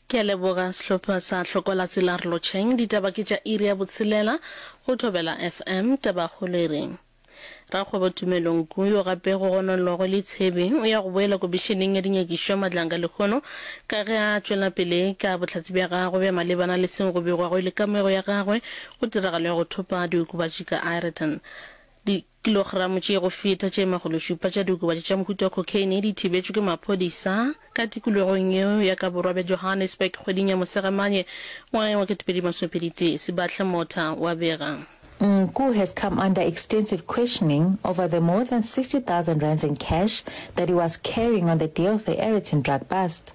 Ke a leboga sehlopha sa Hlokola Tsela re lotšheng. Ditaba ke tša iri ya botshelela go Thobela FM. Tabakgolo e re, Rakgwebo Tumelo Nku yo gape go gononelwago le Tshebi o ya go boela Komišeneng ya Dinyakišo Madlanga lehono ka ge a tšwela pele ka bohlatse bja gagwe bja malebana le seo go begwago e le kamego ya gagwe go tiragalo ya go thopa diokobatši ka Ireton. Di Kilogramo tše go feta tše makgološupa tša diokobatši tša mohuta wa cocaine di thibetšwe ke maphodisa ka tikologong yeo ya ka borwa bja Johannesburg kgweding ya Mosegamane ngwageng wa 2021, Sebahle Motha wa bega. Nku has come under extensive questioning over the more than 60,000 rands in cash that he was carrying on the day of the Aeroton drug bust.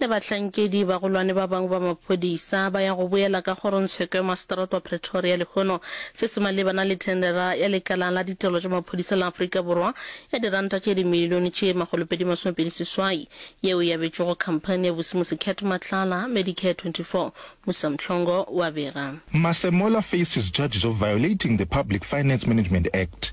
le bahlankedi bagolwane ba bangwe ba maphodisa ba ya go boela ka kgorongtsheko ya maseterata wa Pretoria lehono se se malebana le thendera ya lekala la ditirelo tša maphodisa la Afrika Borwa ya diranta tše dimilione tše makgolopedi masome pedi seswai yeo e abetšwego khamphani ya Busimusi Cat Matlala Medicare 24 Musa Mhlongo wa bega Masemola faces charges of violating the Public Finance Management Act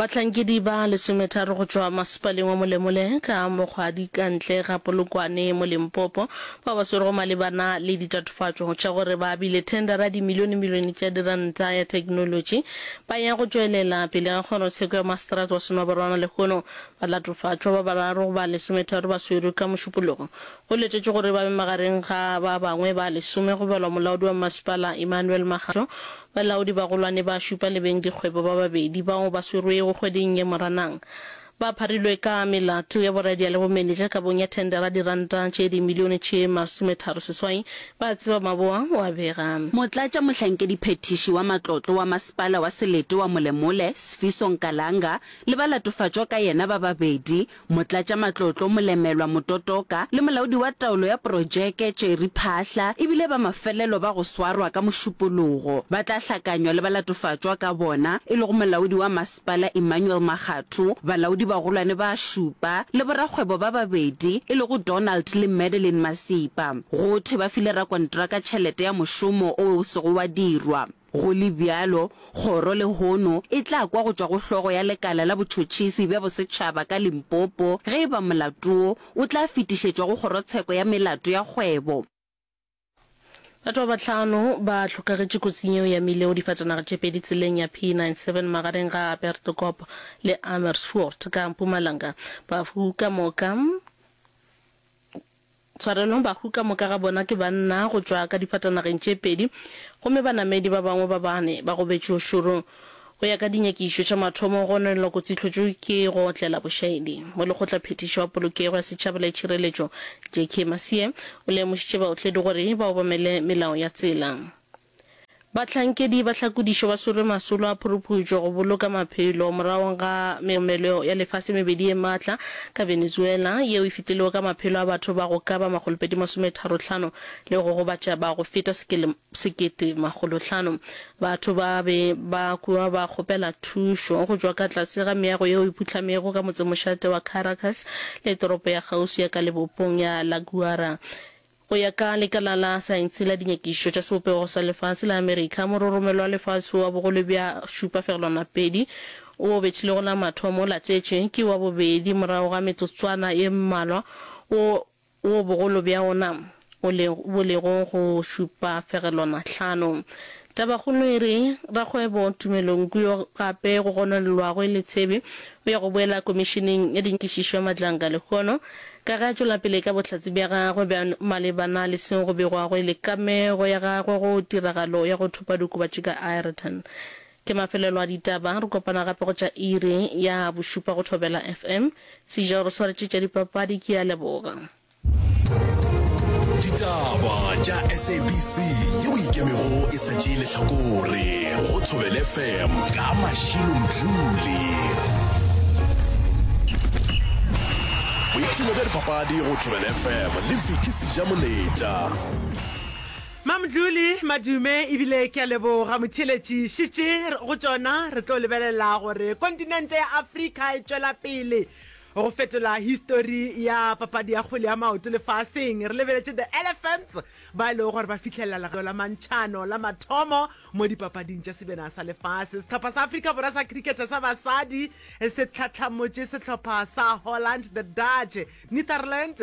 Bahlankedi ba lesometharo go tšwa masepaleng wa Molemole ka Mokgwadi ka ntle ga Polokwane mo Limpopo bao ba swerego malebana le ditatofatšo tša gore ba abile thendara dimilionemilione tša diranta ya theknolotši ba ya go tšwelela pele ga kgorotsheko ya maseterata wa Senobarwana lehono ba latofatšwa. Ba bararo ba lesometharo ba swerwe ka Mošupologo. Go letetšwe gore ba be magareng ga ba bangwe ba lesome go balwa molaodi wa masepala Emmanuel Makgatho Balaodibagolwane ba šupa le beng dikgwebo ba babedi bao ba swerwego kgweding ye Moranang ba pharilwe ka melato ya boradia le bomenetša kabong ya thendera diranta tše dimilione tše masometharo seswai, ba tseba Maboa o a bega. Motlatšamohlankediphethiši wa matlotlo wa masepala wa Selete wa Molemole, Sfiso Nkalanga, le ba latofatšwa ka yena ba babedi, Motlatšamatlotlo Molemelwa Mototoka le Molaodi wa Taolo ya Projeke Tšeri Phahla e bile ba mafelelo ba go swarwa ka Mošupologo. Ba tla hlakanywa le ba latofatšwa ka bona e lego Molaodi wa Masepala Emmanuel Makgatho, balaodi-bagolwane ba šupa le borakgwebo ba babedi e lego Donald le Madeline Masipa. Go thwe ba file rakontraka tšhelete ya mošomo owe o sego wa dirwa. Go le bjalo, kgoro lehono e tla kwa go tšwa go hlogo ya lekala la botšhotšhisi bja bosetšhaba ka Limpopo ge e ba molato wo o tla fetišetšwa go kgorotsheko ya melato ya kgwebo. Batho ba bahlano ba hlokagetše kotsing yeo ya mile o difatanaga tše pedi tseleng ya P97 magareng ga Aberdekoop le Amersfoort ka Mpumalanga. Bafu ka moka. tshwarelong, bahu ka moka ga bona ke banna go tšwa ka difatanageng tše pedi gomme banamedi ba bangwe ba bane ba gobetše ošorong. Go ya ka dinyakišo tša mathomo, go nwelelwa kotsitlhotšo ke go otlela bošaedi. Molekgotlaphethiši wa Polokego ya Setšhaba le Tšhireletšo, JK Masie, o lemošitše baotledi gore ba obamele melao ya tsela. Bahlankedi ba tlhakodišo ba swerwe masolo a phuruphutšo go boloka maphelo moragong ga megomelo ya lefase mebedi ye matla ka Venezuela, yeo e fitilego ka maphelo a batho ba go ka ba makgolopedi masometharo tlhano le go gobatša ba go feta sekete makgolo hlano. Batho ba be ba kwa ba kgopela thušo go tšwa ka tlase ga meago yeo e phuhlamego ka motsemošate wa Caracas le toropo ya kgauswi ya ka lebopong ya La Guaira, Go ya ka lekala la saense la dinyakišo tša sebopego sa lefase la Amerika, mororomelo wa lefase wa bogolo bja šupa fegelwana pedi wo o bethilego la mathomo o latetše ke wa bobedi morago ga metsotswana ye mmalwa wo wo bogolo bja wona o lego bo lego go šupa fegelwana hlano Tabakgolo e re, Rakgwebo Tumelo Nku yo gape go gononelwago e le Tshebi o ya go boela Komišeneng ya Dinkišišo ya Madlanka lehono ka ge a tšwela pele ka bohlatse bja gagwe bja malebana le seo go begwago e le kamego ya gagwe go tiragalo ya go thopa diokobatši ka Aeroton. Ke mafelelo a ditaba. Re kopana gape go tša iri ya bošupa go Thobela FM. Seijo re swaretše tša dipapadi. Ke a leboga. ditaba tša sabc yeo ikemego e sa tšee letlhakore go thobele fm ka mašilo mdluli boipshino bja dipapadi go thobele fm le viki seja moletša Mamdluli madume ebile ke a leboga motheeletši šitše go tšona re tlo lebelela gore kontinente ya Afrika e tšwela pele Go fetola histori ya papadi ya kgwele ya maoto lefaseng, re lebeletše The Elephants ba e lego gore ba fihlelela legado la mantšhano la mathomo mo dipapading tša Sebena sa Lefase. Sehlopha sa Afrika Borwa sa cricket sa basadi se tlhatlhamotše sehlopha sa Holland, The Dutch, Netherlands,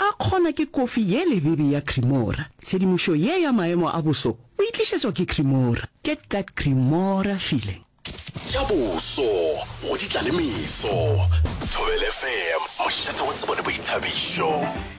A kgona ke kofi ye lebebe ya Cremora. Tshedimošo ye ya maemo a boso o e tlišetšwa ke Cremora. Get that Cremora feeling. Tša boso go di tla le meso. Thobela FM, mošate wa tsebo le boithabišo.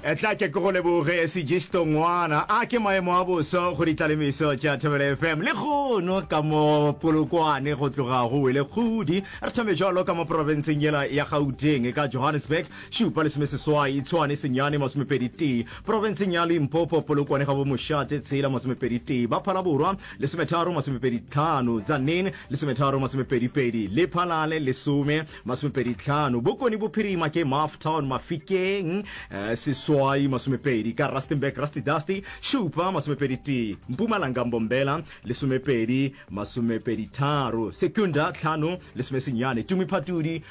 Etla ke ke go leboge Sigisto Ngwana. A ke maemo a boso go di tla le meso tša Thobela FM. Le kgono ka mo Polokwane go tloga go wele kgudi. Re thome bjalo ka mo profenseng yela ya Gauteng ka Johannesburg. šupa lesomeseswai Tshwane senyane masomepedi tee Profenseng ya Limpopo Polokwane ga bo Mošate tshela masomepedi tee Baphala Borwa lesometharo masomepedi tlhano Tzaneen lesometharo masomepedi pedi Lephalale lesome masomepedi tlhano Bokone Bophirima ke Maf Town Mafikeng eh, seswai masomepedi ka Rustenburg Rusty Dusty šupa masomepedi tee Mpumalanga Mbombela lesomepedi masomepedi tharo Secunda tlhano lesomesenyane Tumi Phatudi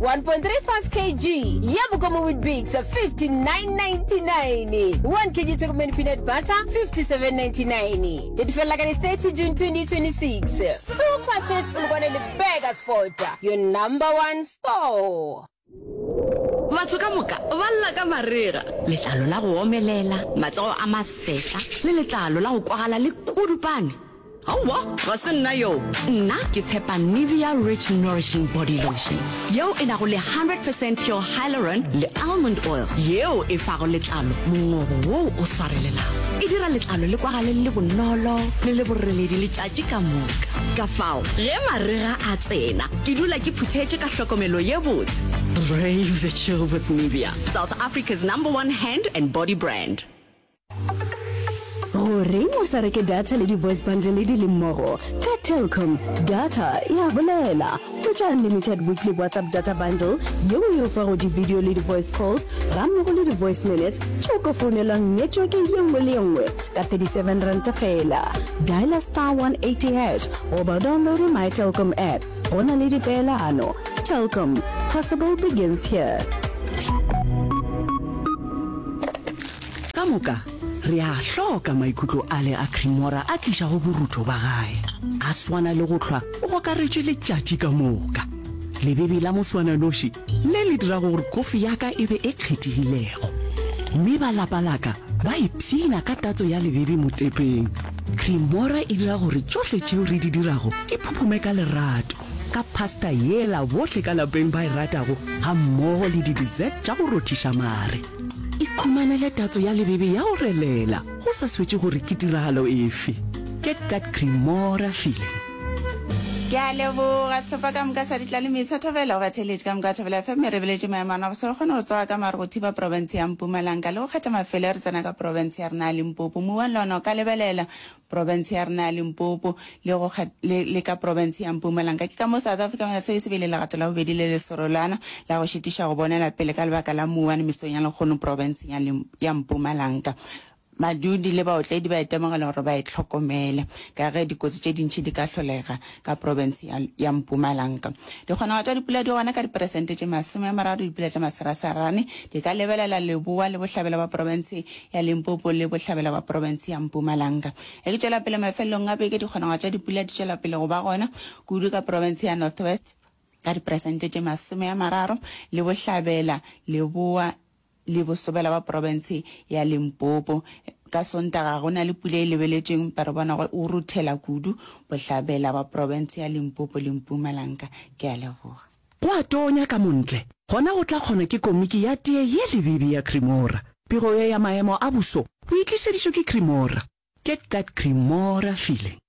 1.35 kg ya Bokoma Weetabix 59.99 1 kg Tokomane Peanut Butter 57.99 Tše di felela ka di 30 June 2026 Super Sales Polokwane le Burger Sport Your number one store Batho ka moka ba lla ka marega, letlalo la go omelela, matsogo a masetlha le letlalo la go kwagala le kudupane. Aowa, ga se nna yoo. Nna ke tshepa Nivea Rich Nourishing Body Lotion yeo e nago le 100 percent pure hyaluron le almond oil yeo e fago letlalo mongobo woo o swarelelago. E dira letlalo le kwagale le le bonolo le le boreledi letšatši ka moka. Ka fao ge marega a tsena, ke dula ke phuthetše ka hlokomelo ye botse. Brave the chill with Nivea, South Africa's number one hand and body brand. Goreng o sa reke data le di-voice bundle di le mmogo? Ka Telkom, data e a bolela. Hwetša unlimited weekly WhatsApp data bundle yeo e o fago di-video le di-voice calls gammogo le di-voice minutes tše o ka founelwang network ye nngwe le ye nngwe ka R37 feela. Dialer star 180 hash goba o downloade My Telkom app. Go na le dipeelano. Telkom, possible begins here. Ka moka, re a a hloka maikutlo ale a Cremora a tlišago borutho ba gae. A swana le go hlwa o gokaretšwe letšatši ka moka. Lebebi la moswananoši le le dirago gore kofi ya ka e be e kgethegilego. Mme ba lapa la ka ba ipshina ka tatso ya lebebi motepeng. Cremora e dira gore tšohle tšeo re di dirago di phuphume ka lerato, ka pasta yela bohle ka lapeng ba e ratago gammogo le di-dessert tša go rothiša mare. ikhumanele tatso ya lebebe ya go relela go sa swetše gore ke tiragalo efe get that cremora feeling ke a leboga sefa ka moka sa ditla le metsha thobela go batheletše ka moka thobela fm re beletše maemano a bosele kgone go tsoga ka mare go thiba porofense ya mpumalanga le go kgetha mafelo ya re tsena ka porofense ya rena ya limpopo muwang le ona o ka lebelela profense ya rena ya Limpopo le go le, le ka profense ya Mpumalanka. Ke ka moo South Africa Mayor Service e be e le legato la bobedi le le serolwana la go šitiša go bonela pele ka lebaka la mouwane mesong ya lekgono profenseng ya, ya Mpumalanka. Badudi le baotledi ba itemogela gore ba e hlokomele ka ge dikotsi tše dintši di ka hlolega ka profense ya, ya Mpumalanka. Dikgonagalo tša dipula di gona ka diperesente tše masome a mararo, dipula tša masarasarane di ka lebelela leboa le bohlabela bja profense ya Limpopo le bohlabela bja profense ya Mpumalanka. Ge ke tšwela pele mafelelong a beke, dikgonagalo tša dipula di tšwela pele go ba gona kudu ka profense ya North West ka diperesente tše masome a mararo le bohlabela leboa le bosobela ba profense ya Limpopo. Ka Sontaga go na le pula e lebeletšweng empa re bona go ruthela kudu bohlabela ba profense ya Limpopo le Mpumalanka. Ke a leboga. Go a tonya ka montle, gona go tla kgonwa ke komiki ya tee ye lebibi ya Cremora. Pego ye ya maemo a boso bo e tlišeditšwe ke Cremora. Get that Cremora feeling.